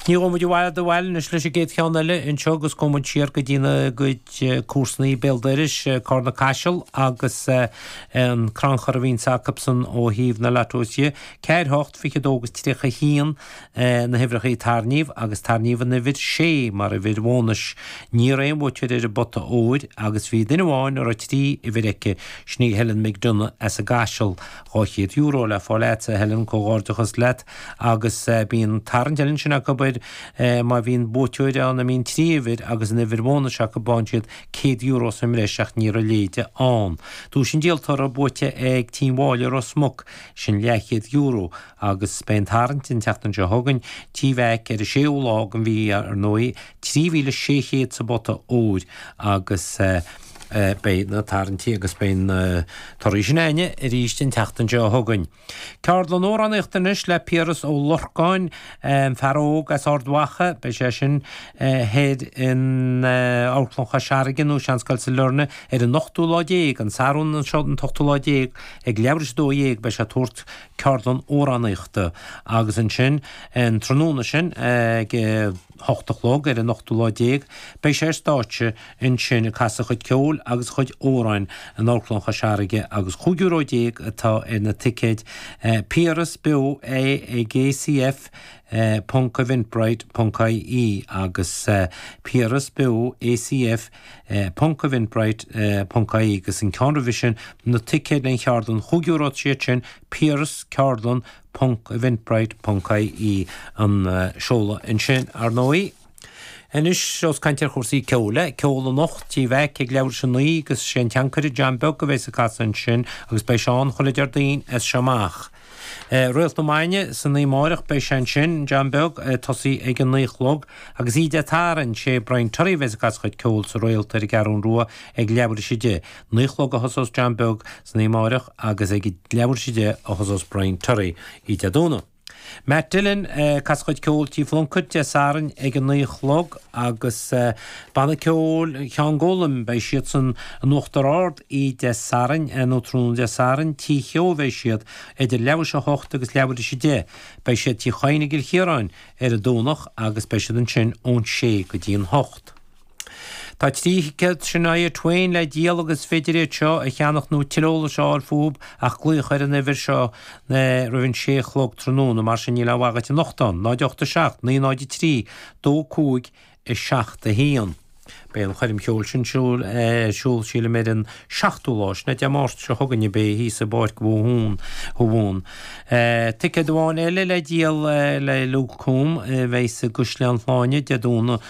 Ní ghabhfaidh muid i bhfad ó bhaile anois leis an gcéad cheann eile. Anseo agus gabhfaidh muid siar go dtí ár gcuid comharsanaí béal dorais, Carna Caiseal agus an crannchur a bhíonns acusan ó thaobh na lottosaí. Ceathair, hocht, fiche dó agus tríocha haon na huimhreachaí a tarraingíodh, agus tarraingíodh an uimhir sé mar uimhir bhónais. Ní raibh aon bhuaiteoir ar an bpota óir, agus bhí duine amháin a raibh trí uimhir aici, sin í Helen McDonagh as an gCaiseal. Dhá chéad euro le fáil a'dsa, a Helen, comhghairdeachas leat. agus bíonn tarraingt eile ansin acu abair má bhíonn buaiteoir ann a mbíonn trí uimhir agus an uimhir bhónais acu buann siad €100 sa mbreis ach ní raibh a leithéide ann. Duais an díoltóra buaite ag Tí Mháille Ros Muc, sin €200 agus beidh an tarraingt an tseachtain seo chugainn, Tí Mheaic, ar an séú lá den mhí ar ndóigh, €3,600 sa bpota óir agus beidh na tarraingtí agus beidh na torthaí sin a'ainne arís an tseachtain seo chugainn. Ceardlann amhránaíochta anois le Piaras Ó Lorcáin, an fear óg as Ard Mhacha, beidh sé sin thoir in Amharclann Chois Fharraige nó Seanscoil Sailearna ar an ochtú lá déag, an Satharn anseo an t-ochtú lá déag, ag leathuair tar éis a dó dhéag beidh sé ag tabhairt ceardlann amhránaíochta agus ansin an tráthnóna sin ag. hocht a chlog ar an ochtú lá déag beidh sé ar stáitse ansin ag casadh a chuid ceoil agus a chuid amhráin in Amharclann Chois Fharraige agus cúig euro déag atá ar na ticéid. Piaras beo é ag ACF ponc eventbrite ponc ie agus Piaras beo ACF ponc eventbrite ponc ie agus an ceann roimhe sin na ticéid le haghaidh an cheardlann chúig euro iad sin Piaras ceardlann Ponc, Eventbrite ponc IE an seoladh ansin, ar ndóigh. Anois ós ag caint ar chúrsaí ceoil é. Ceol anocht, Tí Mheaic ag leathuair tar éis a 9 agus is é an tAncaire John Beag a bheas ag casadh ansin agus beidh sé ann chuile Deardaoin as seo amach. Réalt na Maidne san oíche amáireach beidh sé ansin, John Beag, ag tosaí ag a 9 a chlog. Agus oíche Dé Sathairn, sé Brian Terry a bheas ag casadh a chuid ceoil sa Réalt ar an gCeathrún Rua ag leathuair tar éis a 10. 9 a chlog a thosós John Beag, San oíche amáireach agus ag leathuair tar éis a deich a thosós Brian Terry oíche Dé Domhnaigh. Matt Dillon, ag casadh a chuid ceoil Tí Phlunkett Dé Sathairn ag a naoi a chlog agus Banna Ceoil Cheann Gólaim beidh siadsan in Uachtar Ard oíche Dé Sathairn nó tráthnóna Dé Sathairn tí Cheogh bheidh siad idir leathuair tar éis a hocht agus leathuair tar éis a deich beidh siad tí Chadhain i gCill Chiaráin ar an Domhnach agus beidh siad ansin ón sé go dtí an hocht. Tá trí thicéad Shania Twain le díol agus is féidir iad seo a cheannach nó tuilleadh eolais a fháil fúthu ach glaoch ar an uimhir seo roimh an 6 a chlog tráthnóna, mar sin níl i bhfad agat anocht, 08 7 903 2 5 7 1. Beidh an choirm cheoil sin ar siúl sílim ar an 7ú lá, sin é Dé Máirt seo chugainn a beidh thíos i bPáirc Thuamhumhan. Ticéad amháin eile le díol le Luke Combs beidh sé i gCaisleán Shláine Dé Domhnaigh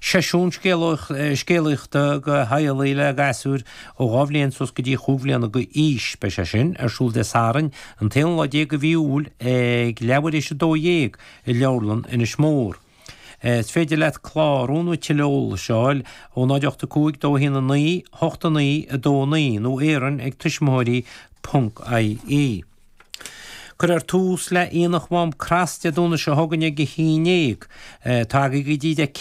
Seisiún scéalaíochta do theaghlaigh le gasúir ó dhá bhliain suas go dtí chúig bhliana d'aois. Beidh sé sin ar siúl Dé Sathairn, an t-aonú lá déag de mhí Iúil ag leathuair tar éis a dó dhéag i Leabharlann Inis Mór. Is féidir leat clárú nó tuilleadh eolais a fháil ó 085 21 9 89 29 nó Árainn ag tuismitheoirí.ie. Cuirfear tús le Aonach Mhám Crois Dé Domhnaigh seo chugainn ag a haon dhéag. Tagaigí go dtí